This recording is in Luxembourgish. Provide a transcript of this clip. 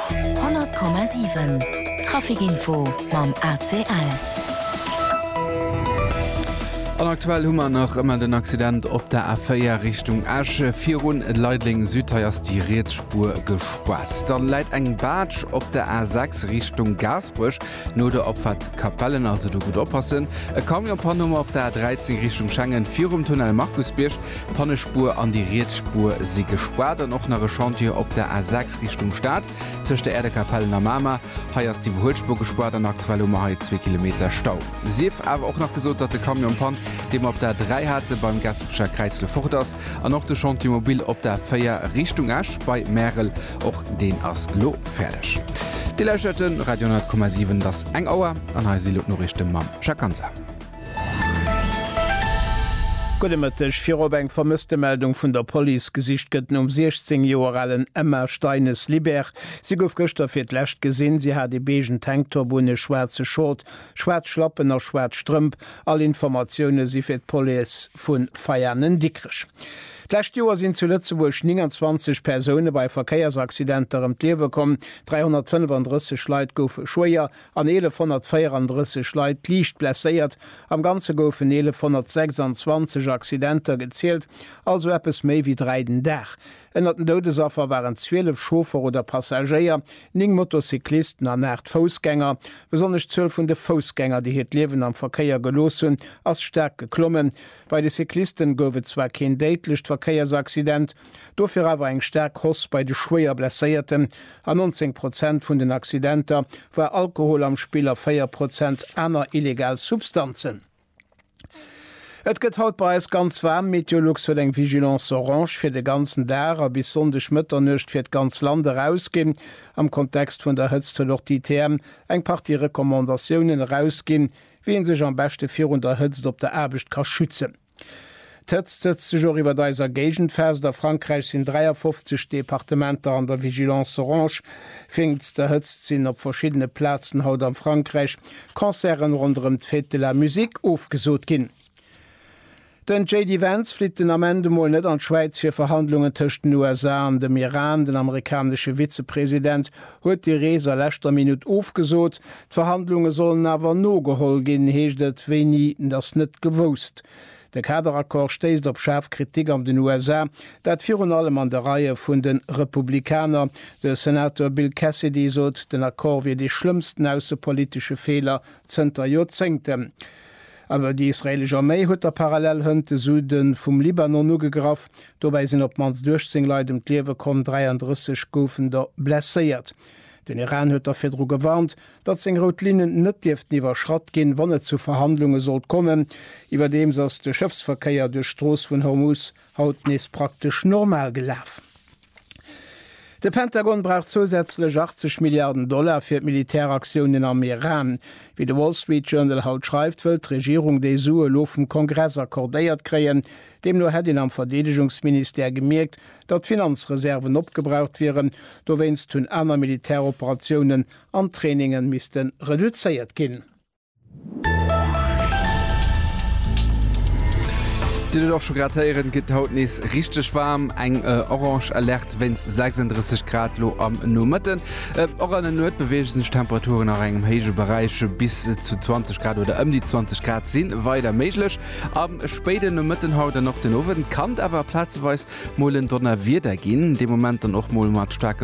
100,7 Trafic-Info mam ACL. An aktuell hu mer nach ëmmer den Accident op der A4 Richtung Esch, virun Leideleng Süd. Hei ass déi riets Spuer gespaart. Dann läit eng Baatsch op der A6 Richtung Gaasperech. No der Opfahrt Capellen also do gudd oppassen. E Camion pannt um op der A 13 Richtung Schengen virum Tunnel Markusbierg. D'Pannespuer an déi riets Spuer si gespaart an och nach e Chantier op der A 6 Richtung Stad tëscht der Aire de Capellen a Mamer. Hei ass d'Iwwerhuelspuer gespaart an aktuell hu mer hei zwee Kilometer Stau. Sief awer och nach gesot, datt de Camion pannt, dee mer op der A 3 hate beim Gaspecher Kräiz elo fort ass an och de Chantier mobil op der A 4 Richtung Esch bei Märel Och deen ass lo fäerdeg. Dir lauschtert de Radio 10,7. Et ass eng Auer an hei si lo d'Noriichte mam Jacques Ganser. Gudde Mëtteg. Virop eng Vermësstemeldung vun der Police. Gesicht gëtt nom 16 Joer alen Emma Steines-Libert. Si gouf gëschter fir d'lescht gesinn. Si hat ee beige Tanktop un, e schwaarze Short, schwaarz Schlappen a schwaarz Strëmp. All Informatioune si fir d'Police vu Veianen-Dikrech. D'lescht Joer sinn zu Lëtzebuerg 29 Persoune bei Verkéiersaccidenter ëm d'Liewe komm, 335 Leit goufe schwéier an 1.134 Leit liicht blesséiert. Am Ganze goufen 1.126 Accidenter gezielt, also eppes méi wéi dräi den Dag. Ënnert den Doudesaffer waren 12 Chauffer oder Passagéier, néng Motocyclisten an aacht Foussgänger. Besonnesch d'Zuel vun de Foussgänger, déi hiert Liewen am Verkéier gelooss hunn, ass staark geklommen. Bei de Cyclisten gouf et zwar keen déidlecht Verkéiersaccident, dofir awer eng staark Hoss bei de schwéier Blesséierten. An 19 Prozent vun den Accidenter war Alkohol am Spill a 4 Prozent aner illegal Substanzen. Et gëtt haut bei eis ganz waarm. Meteolux huet eng Vigilance orange fir de ganzen Dag a bis Sonndeg Mëtternuecht fir d'ganz Land erausginn. Am Kontext vun der Hëtzt huet och d'ITM eng Partie Recommandatiounen erausginn, Wéi ee sech am beschte virun der Hëtzt op der Aarbecht ka schützen. D'Hëtzt sëtzt sech och iwwert eiser Géigend fest. A Frankräich sinn 53 Departementer an der Vigilance orange. Wéinst der Hëtzt sinn op verschiddene Plazen haut am Frankräich Concerten ronderëm d'Fête de la musique ofgesot ginn. Den JD Vance flitt den Ament emol net an d'Schwäiz fir Verhandlungen tëscht den USA an dem Iran. Den amerikanesche Vizepresident huet déi Rees a leschter Minutt ofgesot. D'Verhandlunge sollen awer nogeholl ginn, heescht et. Wéini, ass net gewousst. De Kaderaccord stéisst op schaarf Kritik an den USA, dat virun allem an de Reie vun de Republikaner. De Senator Bill Cassidy sot, den Accord wier dee schlëmmsten aussepolitesche Feeler zënter Joerzéngten. Awer déi israeelesch Arméi huet da parallel hënt de Süde vum Libanon ugegraff. Dobäi sinn op d'mannst 18 Leit ëm d'Liewe komm, 33 goufen der blesséiert. Den Iran huet da virdru gewarnt, datt seng rout Linnen net dierften iwwerschratt ginn, wann et zu Verhandlunge sollt kommen. Iwwerdeems ass de Schëffsverkéier duerch d'Strooss vun Hormuz haut nees praktesch normal gelaf. De Pentagon brauch zousätzlech 80 Milliarden Dollar fir d'Militäraktiounen am Iran. Wéi de Wall Street Journal haut schreift, wëllt d'Regierung déi Sue lo vum Kongress accordéiert kréien. Deemno hätt een am Verdeedegungsministère gemierkt, datt d'Finanzreserven opgebraucht wieren. Dowéinst hunn aner Militäroperatiounen an trainingen misste reduzéiert ginn. Dir huet et och scho grad héieren, gëtt haut nees richteg waarm. Eng Orange Alerte wéinst 36 Grad lo am Nomëtten. Och an der Nuet beweege sech d'Temperaturen nach engem héije Beräich. Bis zu 20 Grad oder ëm déi 20 Grad si weider méiglech. Am spéiden Nomëtten haut an och den Owend kann et awer plazeweis mol en Donnerwieder ginn, dee Moment dann och mol mat staarke.